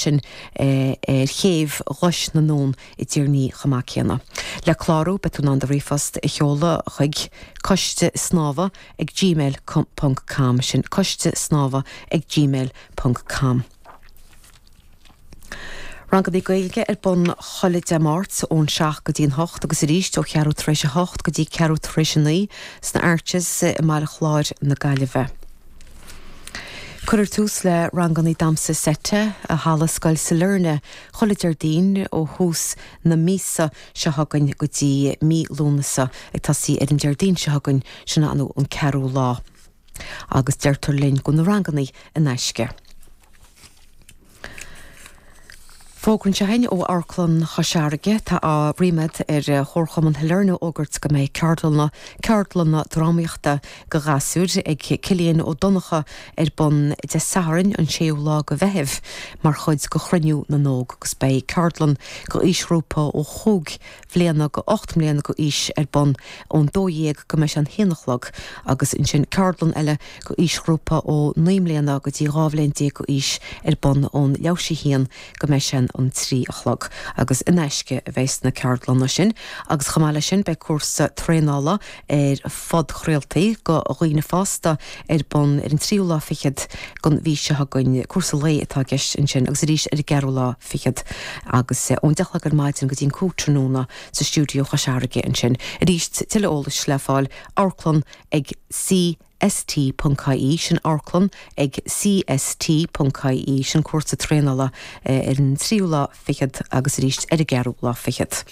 sin ar chéibh Ghlais na nUan i dTír an Fhia chomh maith céanna. Le clárú beidh tú in ann do ríomhphost a sheoladh chuig, Coiste Snámha ag Gmail ponc com, sin, Coiste Snámha ag Gmail ponc com. Ranganna Gaeilge ar bun chuile Dé Máirt ón 7 go dtí an 8 agus arís ó cheathrú tar éis a hocht go dtí ceathrú tar éis a naoi sna Arches i mBaile Chláir na Gaillimhe. Cuirfear tús le ranganna damhsa seite i halla Scoil Sailearna chuile Déardaoin ó thús na míosa seo chugainn go dtí mí Lúnasa, ag tosaí ar an Déardaoin seo chugainn, sin an 4ú lá. Agus deirtear linn go bhfuil na ranganna in aisce. Fógra anseo againn ó Amharclann Chois Fharraige, tá ríméad ar Chomharchumann Shailearna a fhógairt go mbeidh ceardlanna, ceardlanna drámaíochta go ghasúir, ag Cillian Ó Donnachadha ar bun Dé Sathairn an 6ú lá go Mheithimh mar chuid go Chruinniú na nÓg agus beidh ceardlann go aoisghrúpa ó chúig bhliana go ocht mbliana go aois ar bun ón 12 go mbeidh sé an haon a chlog agus ansin ceardlann eile go aoisghrúpa ó naoi mbliana go dtí dhá bhliain déag go aois ar bun ón leathuair tar éis a haon go mbeidh sé an trí a chlog agus in aisce a bheas na ceardlanna sin agus chomh maith leis sin beidh cúrsa traenála ar phodchraoltaí do dhaoine fásta ar bun ar an tríú lá fichead den mhí seo chugainn. Cúrsa lae atá i gceist ansin agus arís ar an gceathrú lá fichead agus ón deich a chlog ar maidin go dtí an cúig tráthnóna sa stiúideo Chois Fharraige ansin. Arís tuilleadh eolais le fáil, Amharclann ag C. ST.ie, sin amharclann ag CST.ie, sin cúrsa traenála ar an tríú lá fichead agus arís ar an gceathrú lá fichead.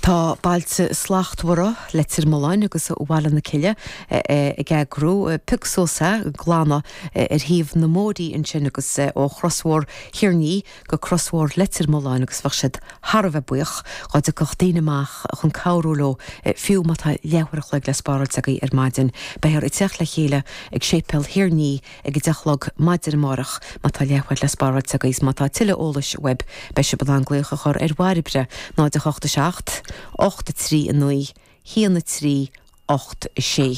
Tá Bailte Slachtmhara, Leitir Mealláin agus Bhaile na Cille ag eagrú Pioc Suas, Glanadh ar thaobh na mbóithrí ansin agus ó chrosbhóthar Thír an Fhia, go crosbhóthar Leitir Mealláin agus bheadh siad thar a bheith buíoch dá dtiocfadh daoine amach chun cabhrú leo, fiú má tá leathuair a chloig le spáráilt agaí ar maidin. Beifear ag teacht le chéile ag Séipéal Thír an Fhia ag a deich a chlog maidin amárach má tá leathuair le spáráilt agaí is má tá tuilleadh eolais uaib beidh sibh in ann glaoch a chur ar Bhairbre 08 7 83 9 1 3 ocht a sé.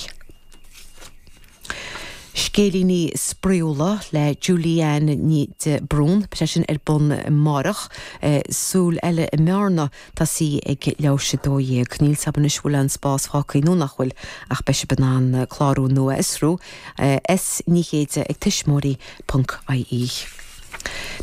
Scéilíní spraíúla le Julianne de Brún beidh sé sin ar bun amárach. Súil eile i mBearna, tosaí ag leathuair tar éis a 12. Níl a fhios agam anois an bhfuil aon spás fágthaí nó nach bhfuil ach beidh sib in ann clárú nó é a fhiosrú. S. Ní Chéide ag tuismitheoirí.ie.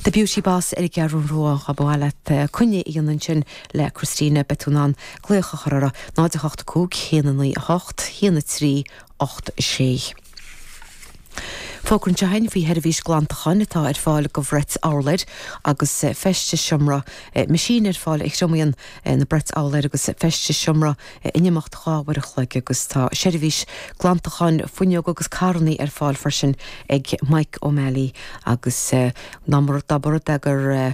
The Beauty Boss ar an gCeathrú Rua, dá mba mhaith leat coinne a dhéanamh ansin le Christina Betounane glaoch a chur orthu, 0 8 5 1 9 8 1 3 8 6. Fógra anseo againn faoi sheirbhís glantacháin atá ar fáil go bhrait urláir agus Feistis Seomra Meaisín ar fáil a thriomaíonn na brait urláir agus Feistis Seomra in imeacht dhá uair a chloig agus tá seirbhís glantacháin fuinneog agus carrannaí ar fáil freisin ag Mike O'Malley agus ná mar a d'obair de gur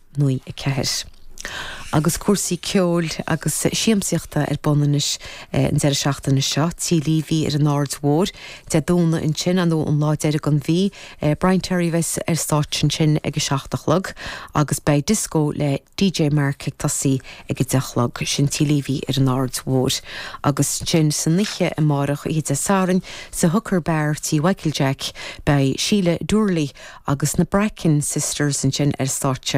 1994. Agus cúrsaí ceoil agus siamsaíochta ar bun anois an deireadh seachtaine seo, tí Leavy ar an Aird Mhór, Dé Domhnaigh ansin, an nó an lá deiridh den mhí, Brian Terry a bheas ar stáitse ansin ag a seacht a chlog agus beidh dioscó le DJ Mark ag tosaí ag a deich a chlog. Sin tí Leavy ar an Aird Mhór. Agus ansin san oíche amárach, oíche Dé Sathairn, sa Hooker Bar tí Mhichael Jack, beidh Síle Doorley agus na Bracken Sisters ansin ar stáitse